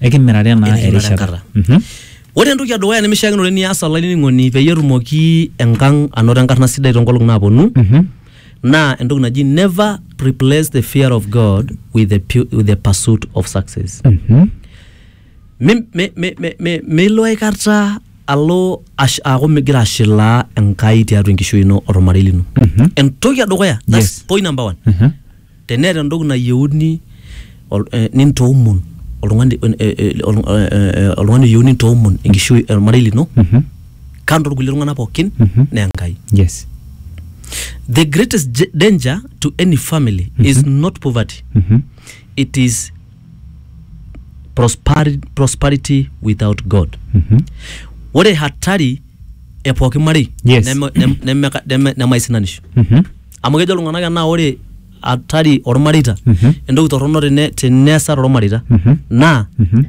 Ekimirare naa Ekimirare erishata. enkata. Mhm. Ore entoki edukuya nemishiakinore nias olainining'oni peyie etumoki enkang anoto enkarna sidai toonkolong'i naaponu Mhm. naa entoki naji never replace the fear of God with the, pu- with the pursuit of success. Mhm. Mi- mi- mi- mi- mi- Milo aikata alo ash- aaku migira ashilaa Enkai tiatua enkishui ino olmarei lino. Mhm. Entoki edukuya, that's Yes. point number one. Mhm. Teneeta entoki nayieuni nintoomon oltung'ani oltung'ani oyieu nintoomon enkishui ormarei lino kando orkulie tung'anak pookin naa Enkai. Yes. The greatest j- danger to any family is not poverty. It is prosperi prosperity without God. Ore hatari e pooki marei Yes. neme neme neme nemaisinanisho. amu kejo iltung'anak enaa ore hatari ormareita Mhm. entoki torrono tene teneesa tormareita Mhm. naa Mhm.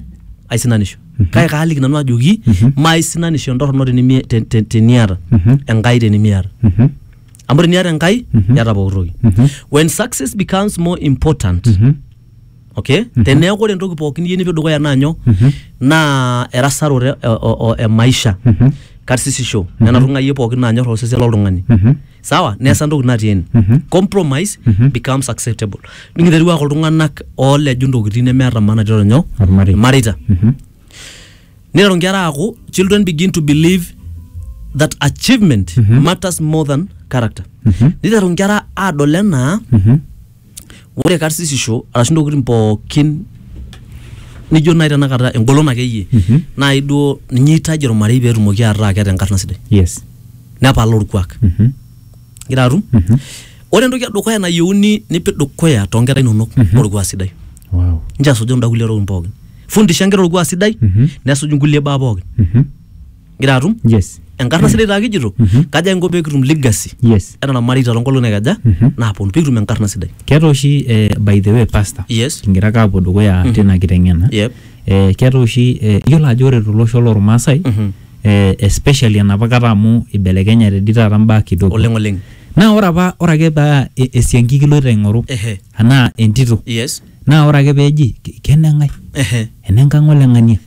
aisinanisho kake kaaliki nanu ajoki Mhm. maaisinanisho entorrono tenimi- te- te- teniata Mhm. enkai tenimiata Mhm. amu teniata enkai Mhm. iata pooki toki Mhm. when success becomes more important Mhm. okay mm -hmm. teneeku ore entoki pookin niyieu nipik dukuya naa nyoo mm -hmm. naa erasaroto e, o, e maisha mm -hmm. karsisisho mm -hmm. nena tung'ayie pookin naanyor osesen loltung'ani mm -hmm. sawa neesa entoki natii ene mm -hmm. compromise mm -hmm. becomes acceptable nikiterua ake iltung'anak ooleju ntokitin nemeeta maana tiatua nyoo irmareita mm -hmm. niteru nkera aaku children begin to believe that achievement mm -hmm. matters more than character mm -hmm. niteru nkera aadol enaa mm -hmm. ore karsisisho arashu intokitin pookin nijo nai tenakata engolon akeyie Mhm. nai duo ninye eitaji ormarei peetumoki ataa keeta enkarna sidai yes nepal orkuak Mhm. igira atum Mhm. ore entoki edukuya nayieuni nipik dukuya toonkera inonok Mhm. orkuak sidai wow inchoo esuju kunda kulie tokitin pookin fundisha inkera orkuak sidai Mhm. nesuj inkulie baa pookin Mhm. gira atum yes enkarna sidai taa kijito Mhm. kaja inko pee kitum legacy yes ena namarita toonkolong'i naikaja Mhm. naaponu pee kitum enkarna sidai keeta oshi eh, by the way pastor yes kingira ake apuo dukuya Mhm. tina kiteng'ena yep eh, keeta oshi eh, iyiolo ajo ore tolosho lormaasai Mhm. eh, especially enapa kata amu ibelekenyate di taata mbaa kidogo oleng oleng naa ore apa ore ake paa e- esiankiki iloito aing'oru ehe anaa entito yes naa ore ake peeji "Ke- keneng'ae ehe enenkang' oleng'ania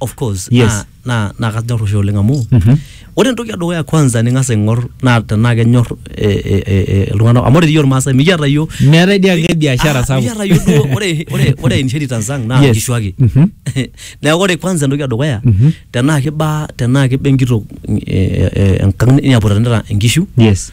of course Yes. naa naa naa kanyor oshi oleng amu Mhm. ore entoki edukuya kwanza ning'as aing'or naa tenaa kenyor eh, eh, eh, eh, iltung'anak amu ore dii iyiok irmaasai mikiata iyiok meetae dii ake biashara Ah, sapuk mikiata iyiok duo ore ore ore inheritance ang naa Yes. nkishu ake Mhm. neeku ore kwanza entoki edukuya Mhm. tenaa kiba tenaa kiba enkitok eh, eh, eh, enkang niaputanita inkishu yes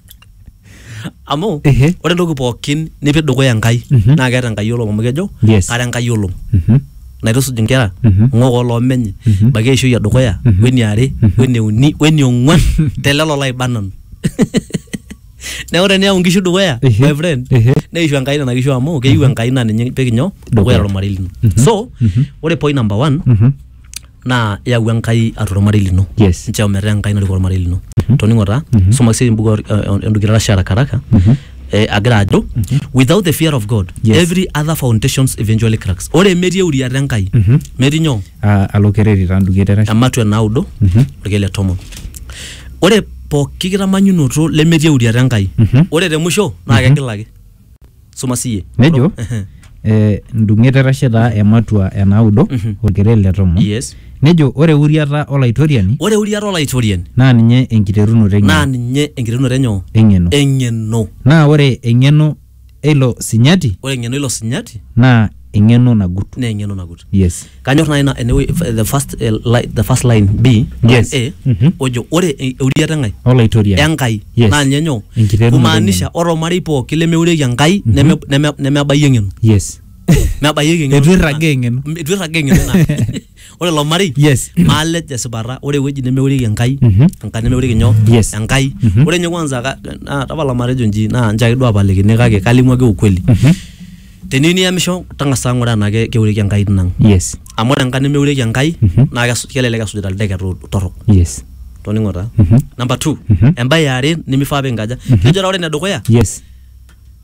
amu Ehe. ore entoki pookin nipik dukuya enkai Mhm. naa keeta enkai olom amu kejo Yes. kara enkai olom Mhm. naitusuj inkera Mhm. ng'ok oloomenye Mhm. baiki eishoi edukuya Mhm. weniare Mhm. weneuni weniong'uan telelo laiba nanu neeku teniyau inkishu dukuya Ehe. my friend Ehe. neishu enkai nena kishu amu keyieu enkai naa ninye ipik inyoo dukuya Dukuya. tolmarei lino Mhm. so Mhm. ore point number one Mhm. naa yau Enkai atua ormarei lino. Yes. Nchoo metaa Enkai narikoo ormarei lino. Toning'o taa, soma siyie embuku o- Endukitarashe haraka haraka, eh, agira ajo, without the fear of God, Yes. every other foundations eventually cracks. Ore metii euriata Enkai, metii nyoo? Ah, alo kereri taa nduki eterashe. ematua naudo orkeek le tomon ore pooki kitamanyunoto lemetii euriata enkai ore te musho naa kegilaki soma siye Nejo, Ehe. eh, ndung'et etashe taa ematua e naudo Mhm. olkelet le tomon yes nejo ore euriata olaitoriani ore euriata olaitoriani naa ninye enkiterunoto naa eng'eno ninye enkiterunoto enyo eng'eno eng'eno naa ore eng'eno eilo sinyati ore eng'eno ilo sinyati naa eng'eno nagut naa eng'eno nagut yes kanyor naaji ina enewueji the first, eh, li- the first line b line Yes. a Mhm. ojo ore e- euriata enkai olaitoriani enkai Yes. naa ninye nyoo Enkiterunoto kumaanisha ore ormarei pooki lemeurieki enkai neme- neme- nemebaiki eng'eno yes mebayieki eng'eno Eitu irragaa eng'eno. eitu irragaa eng'eno ina ore ilo marei Yes. maalej tesipata ore ewueji nemeurieki enkai Mhm. enkai nemeurieki nyoo Yes. enkai Mhm. ore nye kwanza ka- na- tapala matejo nji naa nchaki duo apalikini kake kalimu ake ukweli Mhm. teniyu niyamisho tang'asa ng'ura enaa ke- keurieki enkai tinang Yes. amu ore enkai nemeurieki enkai Mhm. naa kes- kelelek esujita ildeket to- torrok Yes. toning'o taa Mhm. number two Mhm. embae eare nimifaa pinkaja kejo taa ore enedukuya Yes.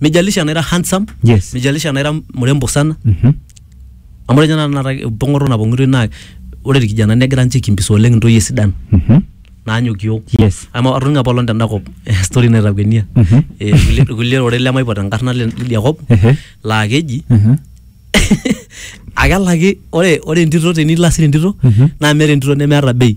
mijalisha anaira handsome Yes. mijalisha anaira mrembo sana Mhm. amu ore ninye tenakata empong'oto napong'itoi naa ore irkijanani negira ninche aikimbisa oleng intoyie sidan Mhm. naanyok iyiok Yes. amu atoning'o apa olong tenda kop eh, story naitakuenia Mhm. Eh, kulie- kulie ororei lemaipot enkarna le- lidia kop Ehe. laa keji Mhm. akelaki ore ore entito tenilo asir entito Mhm. naa meeta entito nemeeta bei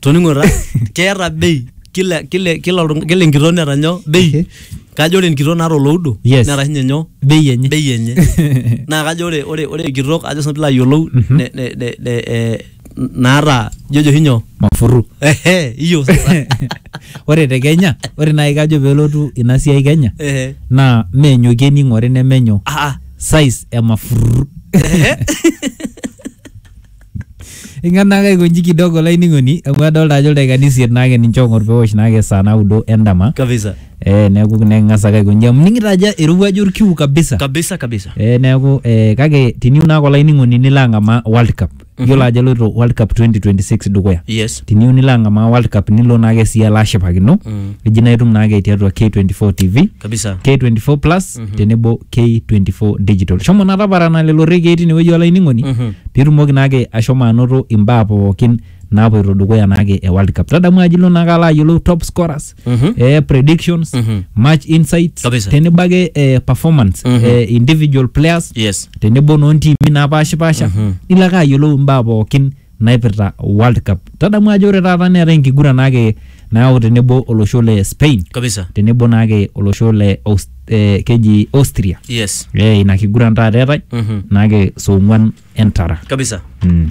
toning'o ta keeta bei kila kila kila oltung- kila enkitok neeta nyoo bei Okay. kajo ore enkitok naata oloudo Yes. neeta sinye nyoo bei enye bei enye naa kajo ore ore ore enkitok ajo sinanu pilo ayiolou ne- ne- ne- ne- eh, naata jojo oshi nyoo mafuru ehe iyo sasa ore te kenya ore naaji kajo pelotu ina siai kenya ehe naa meenyoki ening'ore nemenyo ah ah size emafuru ehe Ing'as naake aikonji kidogo olainining'oni amu adolta ajo ildaikani isiet naake ninche oong'or pewosh naake saa naudo endama. kabisa Eh, neeku neking'as ake aikonji amu ining'ito ajo irowuaju orkiu kabisa. kabisa kabisa Eh, neeku eh, kake tiniu naake olainining'oni nilo ang'amaa World Cup. Iyiolo ajo eloito World Cup 2026 dukuya. yes Tiniu nilo ang'amaa World Cup nilo naake sii alo ashipakino. Mm. Eji naa itum naake tiatua K24 TV, kabisa K24 Plus tenebo K24 Digital. Shomo naa taparana lelo rekiei tinewueji olainining'oni Mhm. pitumoki naake ashomo anoto imbaa pookin naapoito dukuya naake e World Cup. Tadamu ajo ilo naake alo ayiolou top scorers, Mhm. eh, predictions, Mhm. match insights, Kabisa. tenebo ake eh, performance, Mhm. eh, individual players, Yes. tenebo noontiimi naapashipasha, Mhm. nilo ake ayiolou imbaa pookin naipirta World Cup. Tadamu ajo ore taata neetae enkiguran naake nayau tenebo olosho le Spain kabisa tenebo naake olosho le Aus- eh, keji Austria. yes Eh, ina kiguran taata eetae Mhm. naake saa ong'wan entara. kabisa Mm.